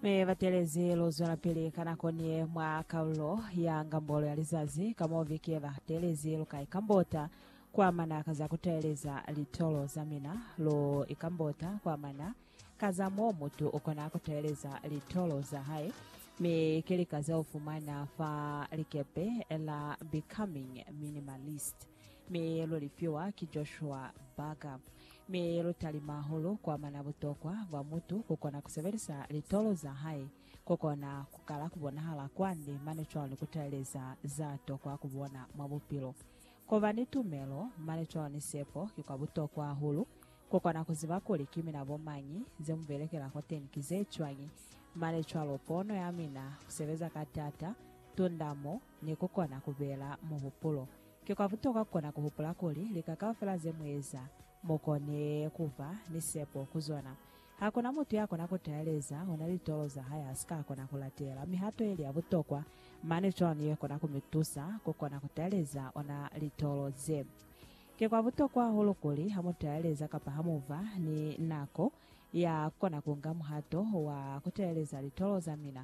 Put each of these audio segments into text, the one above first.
Mi batelezi lu zwelapili ka nako niye mwa kalulo ya ngambolo ya lizazi ka mo vike ba telezi lu ka ikambota kuamana ka za kutaeleza litolo za mina. Lu ikambota kuamana ka za mo mutu ukona kutaeleza litolo za hae, mi ki lika ze ufumana fa likepe la Becoming Minimalist. Miyeyelo lifiwa ki Joshua Barker. Miyeyelo talima hahulu kuamana butokwa bwa mutu kukona kusebelisa litolo zahae kukona kukala kubonahala kwande mane cwalo kutaleleza zatokwa kubona mwa bupilo. Kuba ni tumelo mane cwalo ni sepo ki kwa butokwa hahulu. Kukona kuziba kuli ki mina bomañi, zemubelekela kwateni ki zecwañi, mane cwalo pono yamina, kusebeza ka taata, tundamo, Ni ku kona ku bela muhupulo. Ki kwa butokwa ku kona ku hupula kuli lika kaufela ze mu eza, mu kone ku ba ni sepo ku zona. Ha ku na mutu ya kona ku taeleza ona litolo za hae ha si ka kona ku latela mihato ye li ya butokwa, mane cwalo ye kona ku mi tusa ku kona ku taeleza ona litolo ze. Ki kwa butokwa hahulu kuli ha mu taeleza kapa ha mu ba ni nako ya ku kona ku nga muhato wa ku taeleza litolo za mina,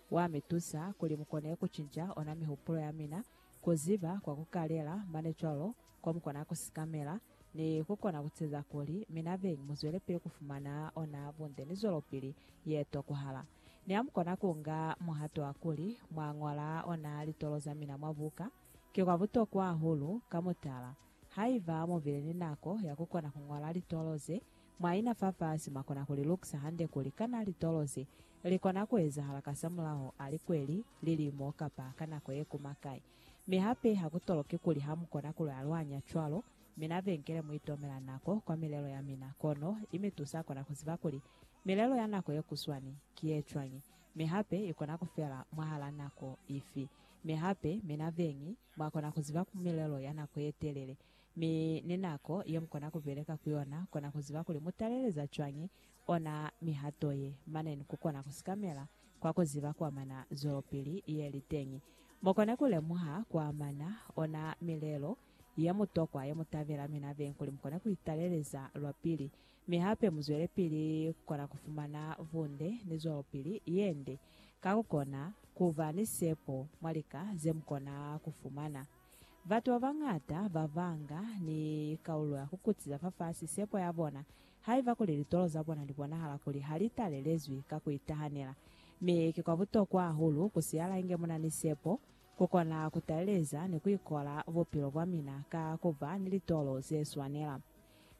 Wa mi tusa kuli mu kone ku cinca ona mihupulo ya mina, ku ziba kwa ku kalela mane cwalo kwa mu kona ku sikamela, ni ku kona ku ceza kuli mi na beñi mu zwelepili ku fumana ona bunde ni zwelopili ye tokohala. Ni ha mu kona ku nga muhato wa kuli mwa ñola ona litolo za mina mwa buka, ki kwa butokwa hahulu. Ka mutala, haiba mu bile ni nako ya ku kona ku ñola litolo ze, Mwaina fafasi mwakona kulilukisa hande kuli kana litolo ze likona kuezahala kasamulaho a likweli, lilimo, kapa ka nako yekuma kai. Mi hape hakutoloki kuli hamukona kulualwanya cwalo. Mina benkele muitomela nako kwa milelo yamina, kono imitusa kona kuziba kuli milelo ya nako yekuswani ki yecwañi, mi hape ikona kufela mwahala nako ifi. Mi hape, mina beñi, mwakona kuziba milelo ya nako yetelele, Mi ni nako ye mukona kubeleka ku yona, kona kuziba kuli mutaleleza cwañi ona mihato ye, mane ni kukona kusikamela kwa kuziba kuamana zwelopili yeli teñi. Mukone kulemuha kuamana ona milelo yemutokwa yemutabela mina beñi kuli mukone kuitaleleza lwapili, mi hape muzwelepili kukona kufumana bunde ni zwelopili yende ka kukona kuba ni sepo mwa lika zemukona kufumana. Batu ba bañata ba banga ni kaulo ya ku kutiza fafasi sepo ya bona haiba kuli litolo za bona li bonahala kuli ha li talelezwi ka ku itahanela. Mi ki kwa butokwa hahulu ku siyala inge mu na ni sepo, ku kona ku taleleza ni ku ikola bupilo bwa mina ka ku ba ni litolo ze swanela.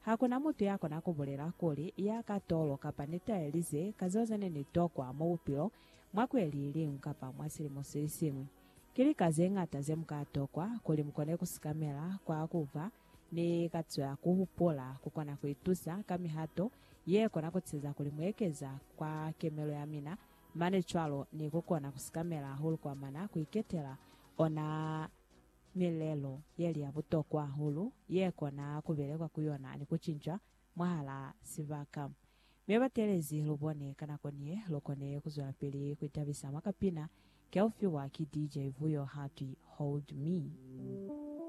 Ha ku na mutu ya kona ku bulela kuli, Ya ka tolo kapa ni talelize ka zeo ze ne ni tokwa mwa bupilo, mwa kweli ye liñwi kapa mwa silimo se siñwi. Ki lika ze ñata ze mu ka tokwa kuli mu kone ku sikamela kwa ku ba ni katiso ya ku hupula. Ku kona ku itusa ka mihato ye kona ku teza kuli mu ekeza kwa kemelo ya mina, mane cwalo ni ku kona ku sikamela hahulu kwa mana ku iketela ona milelo ye li ya butokwa hahulu ye kona ku belekwa ku yona ni ku cincwa mwahalaa sibaka. Mi batelezi lubone ka nako ni ye lukone kuzwelapili kuitabisa mwa kapina keo fiwa ki DJ Vuyo hatwi Hold Me.